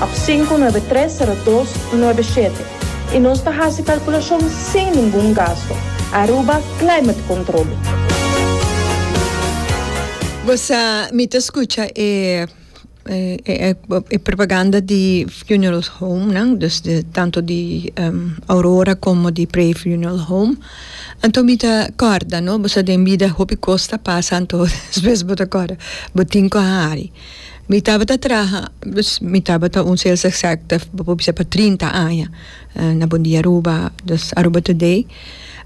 Ap sinku nuebe tres sero dos nuebe shete i nos ta hasi kalkulashon sin ningun gasto. Aruba Climate Control. Bo sa mi ta skucha e e propaganda di funeral home nan dus di tanto di Aurora komo di Pray Funeral Home anto mi ta kòrda no bo sa den bida hopi kos ta pasa anto despues bo ta kòrda bo tin ku a hari. Mi tabata traha, dus mi tabata un sales executive bo por bisa pa trinta aña na Bondia Aruba, dus Aruba Today.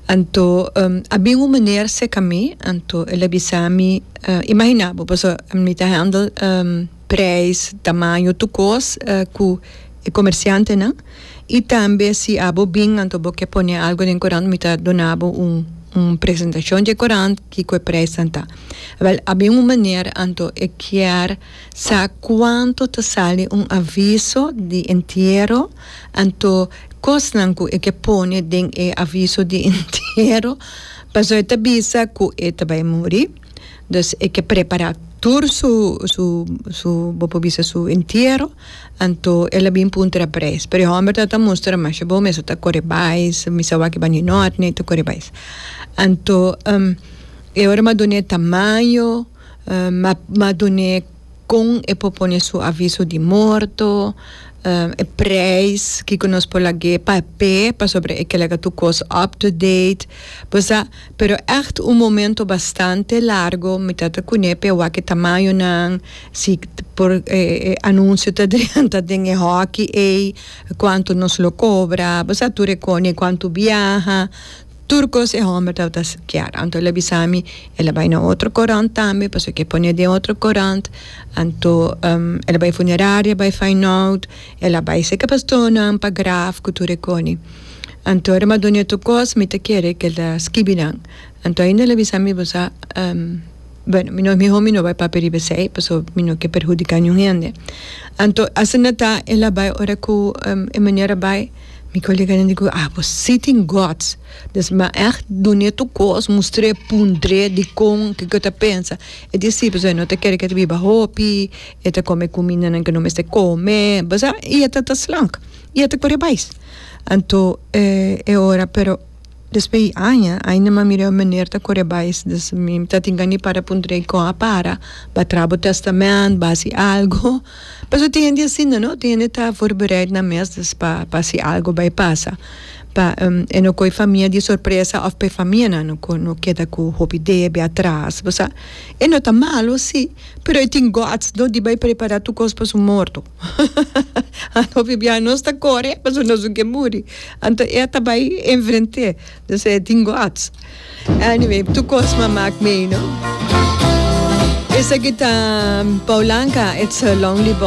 Anto a bin un meneer seka mi, anto el a bisa mi, imagina bo paso mi ta handle prijs, tamaño, tur kos ku e comerciantenan i tambe si abo bin anto bo ke pone algo den kurant mi ta dona bo un presentacion dje kurant. Kiko e prijsnan ta? Wel, a bin un manera anto e kier sa kuanto ta sali un aviso di entiero, anto kosnan ku e ke pone den e aviso di entiero pasobra e ta bisa ku e ta bai muri. Dus e ke prepará tur su, su, su, bo por bisa su entiero. Anto el a bin puntra pa Breis, pero e homber ta ta mustra mas, bo mester ta kore bais, mi sa wak bani nòt nei ta kore bais. Anto e ora mi a dun'é tamaño, mi a mi a dun'é kon e por pone su aviso di morto, e preis kiko nos por lag'é pap'é pasobra e ke laga tur kos up to date, bo sa. Pero echt un momento bastante largo mi ta ta cune pe wak e tamayonan, si por e anuncio ta drenta den e hockey ey, cuanto nos lo cobra, bo sa tur e cone cuanto biaha, tur cos e homber ta ta kier. Anto el a bisa mi el a bay na otro corant tambe pasobra ki e pone den otro corant, anto el a bay funeraria bay feyenoord. El a bai seka pastornan pa graf ku tur e koni. Anto ora mi a duna e tur kos, mi ta kere ku el ta skibi nan. Anto ainda el a bisa mi, Bo sa, Bueno, mi no mi homi no bai papia riba esei, paso mi no ke perhudiká niun hende. Anto asina ta el a bai ora ku e miner a bai. Mi koleganan di ku, Ah, bo si tin gòts. Des mi a ègt duna e tur kos, mustra e pundré dikon, kiko e ta pensa. E di si, paso e no ta kere ku e ta biba hopi. E ta come cumindanan que no mester come, basa, y e ta ta slank, y e ta coré bais. Anto e e ora, pero despues di aña, ay no mas mira e meneer ta coré bais, dus mi ta tin can di para pun trei con a para, ba traha bo testament, ba haci algo, pasobra tin hende asina, no, tin hende ta voorbereid nan mes dus pa pa haci algo bay pasa, pa e no coge e famia di sorpresa of pa e famia nan no keda cu hopi idea bay atras, basa, y no ta malo si. Pero e tin guts no di bay prepara tu cos pa su morto anto biaha nos ta core pasobra nos no kier muri anto e a ta bay enfrente do sea e tin guts anyway tur cos m'a maak mee no. Esaki ta Paulanga it's a lonely boy.